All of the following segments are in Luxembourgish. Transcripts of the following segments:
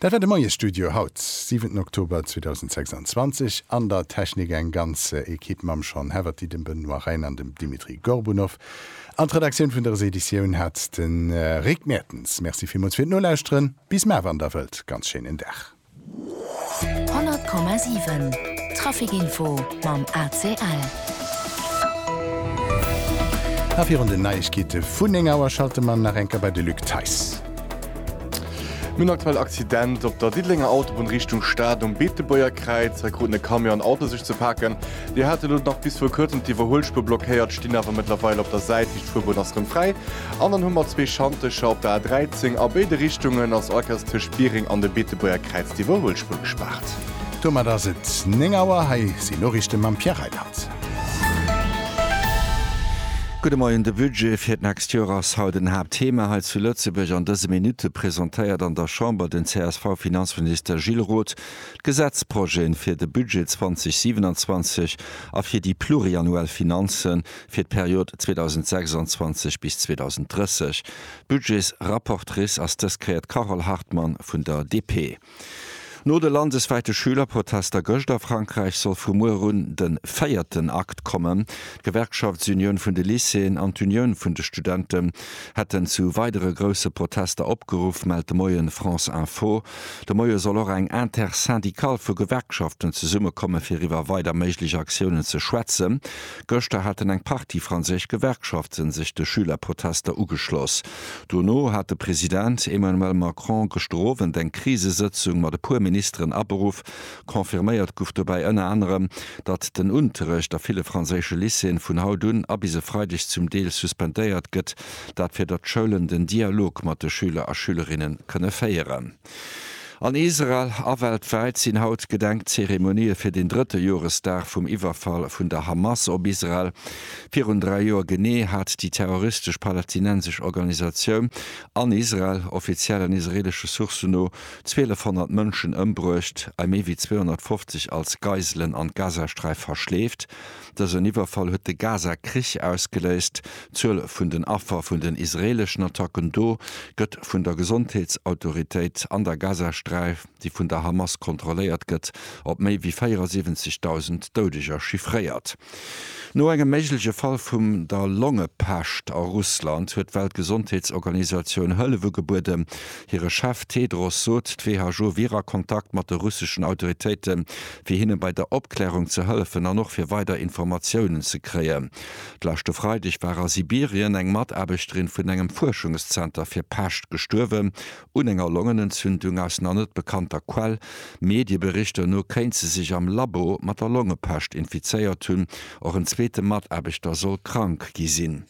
Dat war de Moie Studio haut, siwenten Oktober 2026. An der Technik eng ganz Equipe mam Sean Haverty, dem Benoît Rhijn an dem Dimitri Gorbunov. An d'Redaktioun vun der Reseditioun hat de Rick Mertens. Merci villmools fir d'Nolauschteren. Bis mar, wann Der wëllt. Ganz schéinen Dag. 100,7 Trafic Info mam ACL. A virun den Neiegkeete vun 9 Auer schalte mer nach eng Kéier bei de Luc Theis. Nun aktuell Accident op der Diddelenger Autobunn Richtung Stad um Beetebuerger Kräiz. Hei kruten e Camion an Auto sech ze paken. Déi hate lo nach bis viru kuerzem d'Iwwerhuelspuer blockéiert, stinn awer mëttlerweil op der Säit. Riicht Fuerbunn ass rëm fräi. An dann hu mer zwee Schantecher op der A13. A béide Richtungen ass all Kéiers tëscht Biereng an dem Beetebuerger Kräiz d'Iwwerhuelspuer gespaart. Domat ass et 9 Auer. Hei sinn d'Noriichte mam Pierre Reiland. Gudde Moien, De Budget fir d'nächst Joer ass haut en Haaptthema hei zu Lëtzebuerg. An dëse Minutte presentéiert an der Chamber den CSV-Finanzminister Gilles Roth d'Gesetzprojeten fir de Budget 2027 a fir déi pluriannuell Finanzen, fir d'Period 2026 bis 2030. Budgets-rapportrice ass dës Kéier d'Carole Hartmann vun der DP. No de landeswäite Schülerprotester gëscht a Frankräich soll vu muer un de véierten Akt kommen. D'Gewerkschaftsunioun vun de Lycéeën an d'Unioun vun de Studenten hätten zu weidere grousse Protester opgeruff, mellt de Moien France Info. De Moie soll och eng Intersyndicale vu Gewerkschaften zesummekomme fir iwwer weider méiglech Aktiounen ze schwätzen. Gëschter haten eng Partie franséisch Gewerkschaften sech de Schülerprotester ugeschloss. Dono hat de President Emmanuel Macron gëschter Owend eng Krisesëtzung mat e puer Ministeren aberuff. Confirméiert guff dobäi ënner anerem, datt den Unterrecht a ville franséische Lycéeën vun haut un a bis e Freideg zum Deel suspendéiert gëtt. Dat fir datt d'Schoulen den Dialog mat de Schüler a Schülerinnen kënne féieren. An Israel a weltwäit sinn haut Gedenkzeremonië fir den drëtte Joresdag vum Iwwerfall vun der Hamas op Israel. Virun dräi Joer genee hat déi terroristesch palästinensesch Organisatioun an Israel, offiziellen israeelesche Sourcen no, 1.200 Mënschen ëmbruecht a méi wéi 250 als Geiselen an d'Gazasträif verschleeft. Dësen Iwwerfall huet de Gaza-Krich ausgeléist. D'Zuel vun den Affer vun den israeeleschen Attacken do gëtt vun der Gesondheetsautoritéit an der Gazasträif, déi vun der Hamas kontrolléiert gëtt, op méi wéi 74.000 Doudeger chiffréiert. No engem méigleche Fall vum der Longepescht a Russland huet d'Weltgesondheetsorganisatioun Hëllef ugebueden. Hire Chef Tedros sot, d'WHO wier a Kontakt mat de russeschen Autoritéiten, fir hinne bei der Opklärung ze hëllefen an och fir weider Informatiounen ze kréien. D'leschte Freideg war a Sibirien eng Mataarbechterin vun engem Fuerschungszenter fir Pescht gestuerwen un enger Longenentzündung. Aus nach net bekannter Quell, Medieberichter no, kéint se sech am Labo mat der Longepescht infizéiert hunn. Och en zweete Mataarbechter soll krank gi sinn.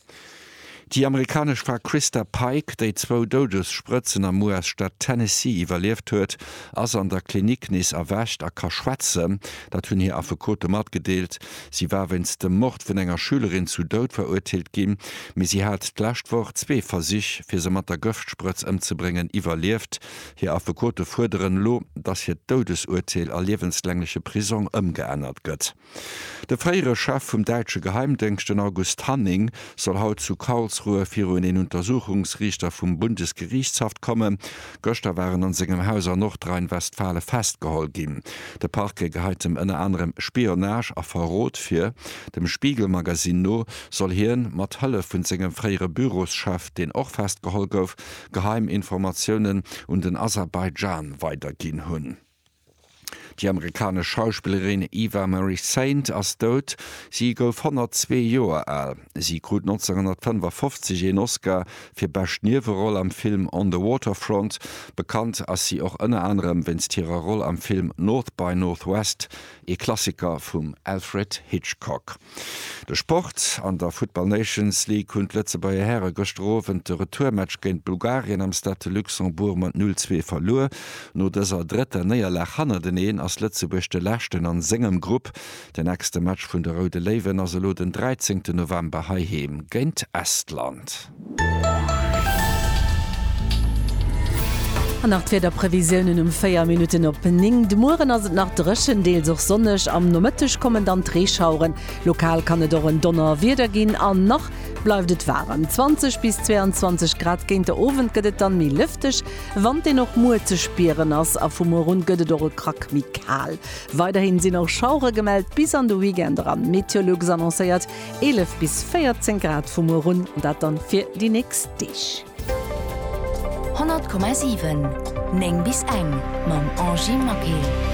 Déi amerikanesch Fra Christa Pike, déi zwou Doudessprëtzen am US-Staat Tennessee iwwerlieft huet, ass an der Klinik nees erwächt a ka schwätzen. Dat hunn hir Affekote matgedeelt. Si war wéinst dem Mord vun enger Schülerin zu Doud verurteelt ginn, mee si hat d'lescht Woch zwee Versich, fir se mat der Gëftsprëtz ëmzebréngen, iwwerlieft. Hir Affekote fuerderen elo, datt hiert Doudesurteel a liewenslängleche Prisong ëmgeännert gëtt. De fréiere Chef vum däitsche Geheimdéngscht, den August Hanning, soll haut zu Karlsruhe virun een Untersuchungsriichter vum Bundesgerichtshaft kommen. Gëschter war en an sengem Haus an Nordrhein-Westfalen festgeholl ginn. De Parquet geheit em ënner anerem Spionage a Verrot vir. Dem Spiegel-Magazin no soll hien, mat Hëllef vun sengem fréiere Büroschef, deen och festgeholl gouf, geheim Informatiounen un den Aserbaidschan weiderginn hunn. Déi amerikanesch Schauspillerin Eva Marie Saint ass dout. Si gouf 102 Joer al. Si krut 1955 een Oscar fir bescht Nieweroll am Film On the Waterfront. Bekannt ass si och ënner anerem wéinst hirer Roll am Film North by Northwest, ee Klassiker vum Alfred Hitchcock. De Sport, An der Football Nations League hunn d'Lëtzebuerger Häre gëschter Owend de Retourmatch géint Bulgarien am Stade de Luxembourg mat 0, 2 verluer. No dëser drëtter Néierlag hannerteneen ass Lëtzebuerg de Leschten a sengem Grupp. Den nächste Match vun de Roude Léiwen ass elo den 13 November heiheem géint Estland. An nach d'Wiederprevisiounen um 4 Minutten op 9. De Mueren ass et nach dréchen, deels och sonneg. Am Nomëtteg kommen dann d'Reeschaueren, lokal kann et och en Donnerwieder ginn. An nach bleift et waarem, 20 bis 22 Grad. Géint de Owend gëtt et dann méi lëfteg, Wand deen och muer ze spieren ass. A vu muer un gëtt et och e Krack méi kal. Weiderhin sinn och Schauere gemellt bis an de Weekend eran. Meteolux annoncéiert 11 bis 14 Grad vu muer un, dat dann fir déi nächst Deeg. 100,7 9 bis eng mam Angie Maquet.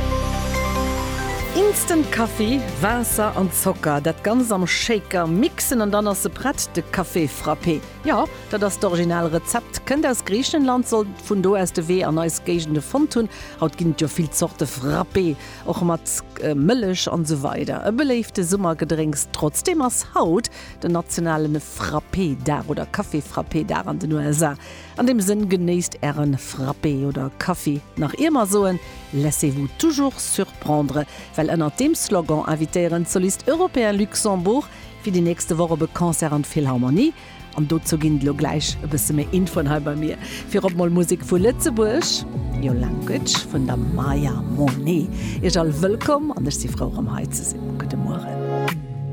Instant Kaffi, Waasser an Zocker, dat Ganzt am Shaker mixen an dann ass se prett, de Café frappé. Jo, dat ass d'original Rezept, kënnt aus Griichenland, sollt vun do aus de Wee an eis Géigende fonnt hunn. Haut ginn et jo vill Zorte Frappé. Och mat Mëllech an esou weider. E beléifte Summergedrénks. Trotzdeem ass haut den nationalen Frappé-Dag oder Café-Frappé-Dag an den USA. An deem Sënn, genéisst ären Frappé oder Kaffi, nach ier mer soen, laissez-vous toujours surprendre, well ënnert deem Slogan invitéieren d'Solistes Européens Luxembourg fir déi nächste Woch op e Concert an d'Philharmonie. An dozou ginn et elo gläich e bësse méi Infoen hei bei mir. Virop mol Musek vu Lëtzebuerg, Your Language vun der Maya Monet. Iech all wëllkomm an ech si frou, erëm hei ze sinn. Gudde Mueren.